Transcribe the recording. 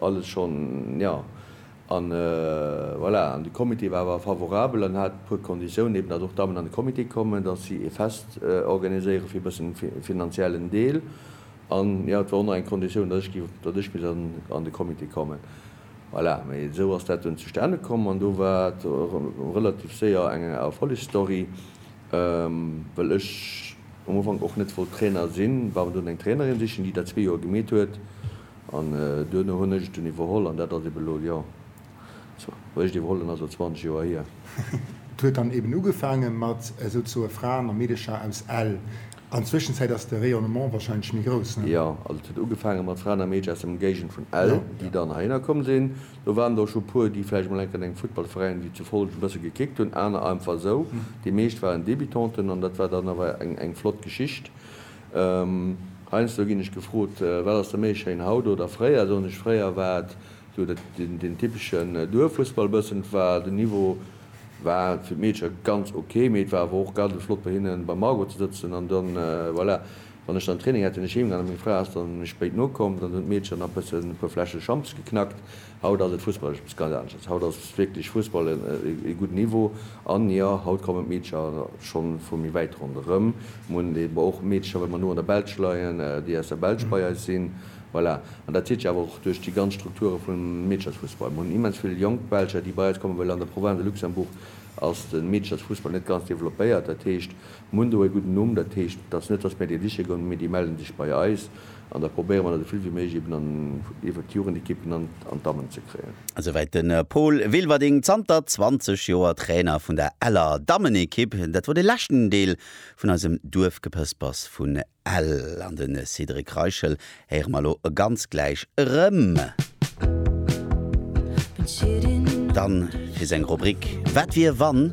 Alles schonn, jo. An voilà, an de Comité war awer favorabel an hat e puer Konditiounen, eben datt och d'Dammen an de Comité kommen, datt si e Fest organiséiere fir e bëssen e finanziellen Deel. An jo, et war och nach eng Konditioun, datt ech gi, datt ech misst an de Comité kommen. Voilà, mee esou ass dat dunn zustane komm an do war et relativ séier eng Erfollegsstory, well ech um Ufank och net wollt Trainer sinn, war dunn eng Trainerin sichen, déi dat zwee Joer gemeet huet An duerno hunn ech et dunn iwwerholl an dat ass eben elo, jo, richt iwwerholl, dunn ass elo 20 Joer hier. Et huet dann eben ugefaange mat esouzesoe Fraen a Meedecher aus Ell. An d'Zwëschenzäit ass de Rayonnement warscheinlech méi grouss, ne? Jo, also et huet ugefaange mat Fraen a Meedcher aus der Emgéigend vun Ell, déi dann heihinner komm sinn. Do waren der och scho e puer, déi vläicht mol enk an engem Futtballveräin wéi zu Follgen e bësse gekickt hunn, aner einfach esou. Déi meescht waren Débutanten an dat war dann awer eng flott Geschicht. Heiansdo ginn ech gefrot, Wat ass der méi schéin, haut oder fréier? Soen ech, Fréier war et esou deen typeschen Duerffussball e bëssen. Et war, den Niveau war fir d'Meedcher ganz ok, mee et war awer och garde flott bei hinne beim Margot ze sëtzen. An dann, voilà, wann ech dann Training hat, sinn ech heemgaan a meng Fra ass dann méi spéit nokomm. Dann hunn d'Meedcher nach e bëssen e puer Fläsche Champs geknackt. Haut ass et fussballesch eppes ganz anesches. Haut ass wierklech Fussball e gudden Niveau. An jo, haut kommen d'Meedercher schonn vu méi wäit ronderëm. Mir hunn eben och Meedercher, well mer no an der Belsch leien, déi aus der Belsch bei eis sinn. Voilà. An dat zitt sech awer och duerch déi ganz Strukture vum Meederchersfussball. Mir hunn immens vill jonk Belger, déi bei eis kommen, well an der Province de Luxembourg ass de Meederchersfussball net ganz developpéiert. Dat heescht, mir hunn do e gudden Numm. Dat heescht, et ass net, dass mir déi siche goen, mee déi melle sech bei eis. An da probéiere mer dat esouvill wéi méiglech eben an iwwert d'Jugendequipen an d'Dammen ze kréien. Esouwäit de Paul Wilwerding, zanter 20 Joer Trainer vun der Eller Dammenequipp. Dat wor de leschten Deel vun eisem Duerfgepëspers vun Ell. An de Cédric Reichel héiere mer elo ganz gläich erëm. Dann fir seng Rubrik Wat wier wann?